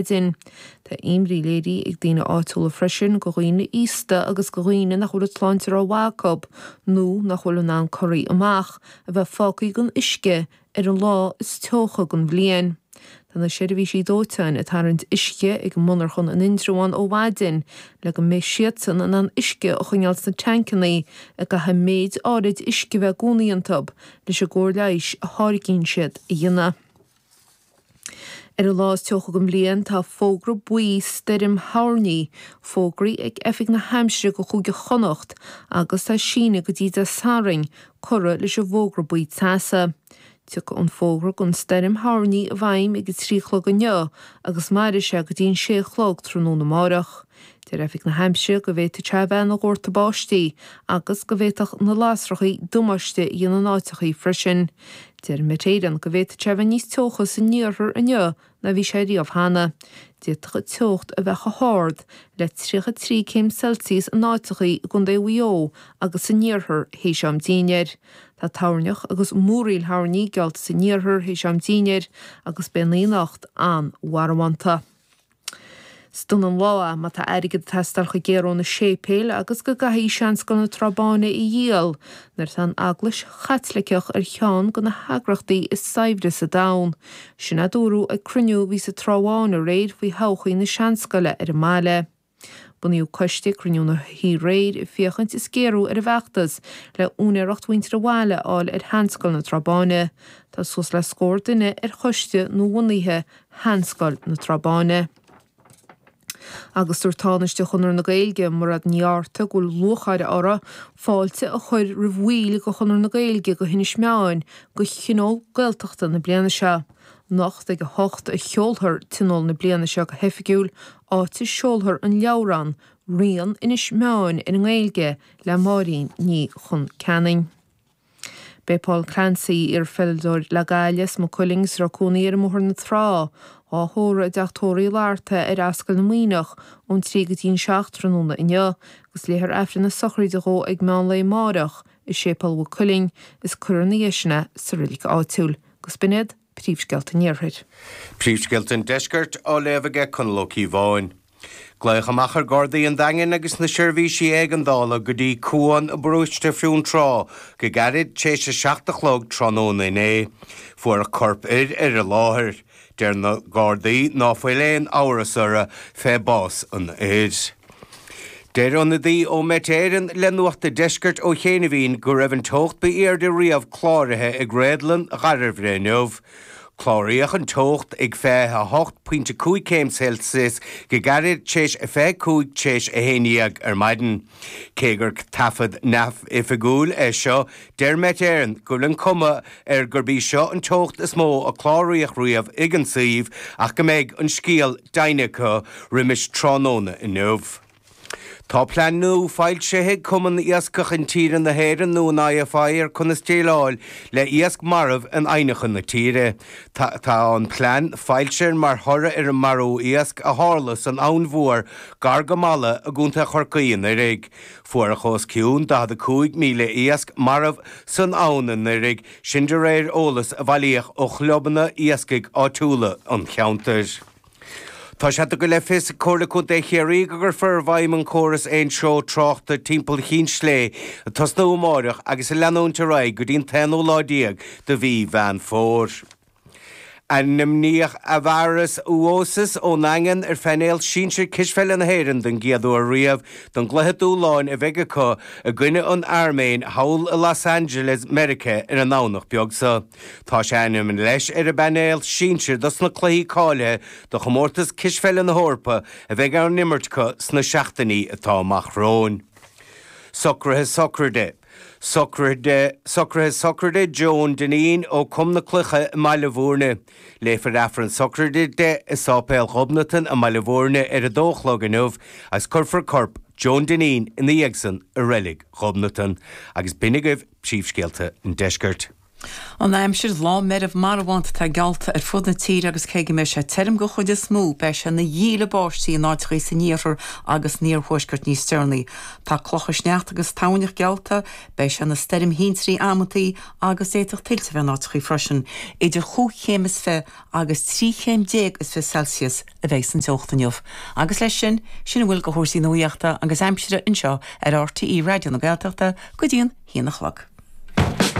Éirinn. Tá imní léirithe ag daoine áitiúla freisin go dhaoine aosta agus go dhaoine nach bhfuil an tsláinte ró mhaith acu, nó nach bhfuil in ann corraí amach, a bheith fágtha gan uisce ar an lá is teocha den bhliain. Tá na seirbhísí dóiteáin ag tarraingt uisce ag an monarchan in Indreabhán ó mhaidin le go mbeidh siadsan in ann uisce a choinneáil sna teainceanna a gcaithfidh méid áirid uisce bheith i gcónaí iontu, leis an gcóir leighis a tháirgíonn siad a dhéanamh. Ar an lá is teocha den bhliain tá fógra buí stoirm thoirní fógraithe ag Oifig na hAimsire go Chúige Chonnacht agus tá síneadh go dtí Dé Sathairn curtha leis an bhfógra buí teasa. Tiocfaidh an fógra don stoirm thoirní i bhfeidhm ag a trí chlog inniu agus mairfidh sé go dtí an sé a chlog tráthnóna amárach. Deir Oifig na hAimsire go bhféadfadh sé a bheith ina dhórtadh báistí agus go bhféadfadh na lasrachaí damáiste a dhéanamh in áiteachaí freisin. Deir Met Éireann go bhféadfadh sé a bheith níos teocha san iarthar inniu ná bhí sé riamh cheana. D'fhéadfadh an teocht a bheith chomh hard le 33 céim Celsius in áiteachaí i gCondae Mhaigh Eo agus san iarthar théis am dinnéir. Tá toirneach agus múraíl thoirní geallta san iarthar théis am dinnéir agus beidh an oíche anocht an-mharbhánta. Is dona an lá má tá airgead ag teastáil chomh géar ó na séipéil agus go gcaithfí seanscoil na Trá Báine a dhíol, nuair atá an Eaglais Chaitliceach ar cheann go na heagrachtaí is saibhre sa domhan. Sin a dúradh ag cruinniú a bhí sa Trá Bháin aréir faoi thodhchaí na seanscoile ar an mbaile. Bunaíodh coiste ag cruinniú na hoíche aréir ag féachaint is géarú ar an bhfeachtas le úinéireacht mhuintir an bhaile a fháil ar sheanscoil na Trá Báine. Tá suas le scór duine ar choiste nuabhunaithe Sheanscoil na Trá Báine. Agus dúirt Tánaiste Chonradh na Gaeilge, Mairéad Ní Fhátharta, go bhfuil lúcháir orthu fáilte a chur roimh bhaill de Chonradh na Gaeilge go hInis Meáin go Thionól Gaeltachta na bliana seo. Anocht ag a hocht a sheolfar Tionól na bliana seo go hoifigiúil, áit a seolfar an leabhrán Rian Inis Meáin ar an nGaeilge le Máirín Ní Choncheanainn. Beidh Paul Clancy, iarpheileadóir le Gaillimh is Maigh Cuilinn, is a raibh cónaí air i mBóthar na Trá, dhá thórramh i dteach tórraimh Uí Fhlatharta ar Ascaill na Muimhneach ón trí go dtí an seacht tráthnóna inniu, agus léifear Aifreann na sochraide dhó ag meán lae amáireach i Séipéal Mhaigh Cuilinn is cuirfear ina dhiaidh sin é sa reilig áitiúil. Agus b'in iad. Príomhscéalta an Iarthair. Príomhscéalta an Deiscirt á léamh aige Conall Ó Cíobháin. Glaodh amach ar Ghardaí an Daingin agus na seirbhísí éigeandála go dtí Cuan i bParóiste Fionntrá go gairid tar éis a seacht a chlog tráthnóna inné. Fuaireadh corp fir ar an láthair. Deir na Gardaí ná fuil aon amhras orra fé bás an fhir. Deir ionadaí ó Met Éireann le Nuacht a' Deiscirt ó chianaibhín go raibh an teocht ba aoirde riamh cláraithe ag Réadlann Dhairbhre inniu. Cláraíodh an teocht ag 28 pointe 5 céim Celsius go gairid t'éis a 25 t'éis a haon dhéag ar maidin. Cé gur taifead neamhoifigiúil é seo, Deir Met Éireann go bhfuil an cuma air gurb í seo an teocht is mó a cláraíodh riamh ag an suíomh ach go mbeidh an scéal deimhnithe acu roimis tráthnóna inniu. Tá plean nua foilsithe ag Cumann Iascach Intíre na hÉireann nó an IFI ar conas déileáil le iasc marbh in aibhneacha na tíre. Tá an plean foilsithe mar thoradh ar an marú iasc a tharla san Abhainn Mhór gar go Mala i gContae Chorcaí anuraidh. Fuaireadh os cionn 45,000 iasc marbh san abhainn anuiridh sin de réir eolas a bhailíodh ó chlubanna iascaigh áitiúla an cheantair. Tá sé tugtha le fios ag Comhairle Contae Chiarraí go gcuirfear i bhfeidhm an córas aon treo tráchta timpeall Chinn Sléibhe ag tosnú amáireach agus ag leanúint ar aghaidh go dtí an t-aonú lá déag de mhí Mheán Fómhair. Ainmníodh Aivaras Uosis ón Daingean ar phainéal sinsir cispheile na hÉireann don gcéad uair riamh don gcluiche dúshláin a bheidh acu i gcoinne an Airméin thall i Los Angeles Mheiriceá ar an nDomhnach beag seo. Tá sé ainm leis ar an bpainéal sinsir dos na cluichí cáilithe do chomórtas cispheile na hEorpa a bheidh á n-imirt acu sna seachtainí atá amach romhainn. Socruithe sochraide. Socruithe sochraide Joan Dineen ó Com na Cloiche i mBaile Bhúirne. Léifear Aifreann sochraide di i Sáipéal Ghobnatan i mBaile Bhúirne ar a dó a chlog inniu agus cuirfear corp Joan Dineen ina dhiaidh san i Reilig Ghobnatan. Agus b'shin agaibh príomhscéalta an Deiscirt. An aimsir, Lá meirbh marbhánta atá geallta ar fud na tíre agus cé go mbeidh sé tirim den chuid is mó, beidh sé ina dhíle báistí in áiteachaí san iarthar agus san iarthuaisceart níos deireanaí. Tá clocha sneachta agus toirneach geallta. Beidh sé ina stoirm thintrí amantaí agus d'fhéadfadh tuilte a bheith in áiteachaí freisin. Idir chúig chéim is fiche agus trí chéim déag is fiche Celsius a bheidh san teocht inniu. Agus leis sin, sin a bhfuil de chúrsaí nuaíochta agus aimsire anseo ar RTÉ Raidió na Gaeltachta go dtí an haon a chlog.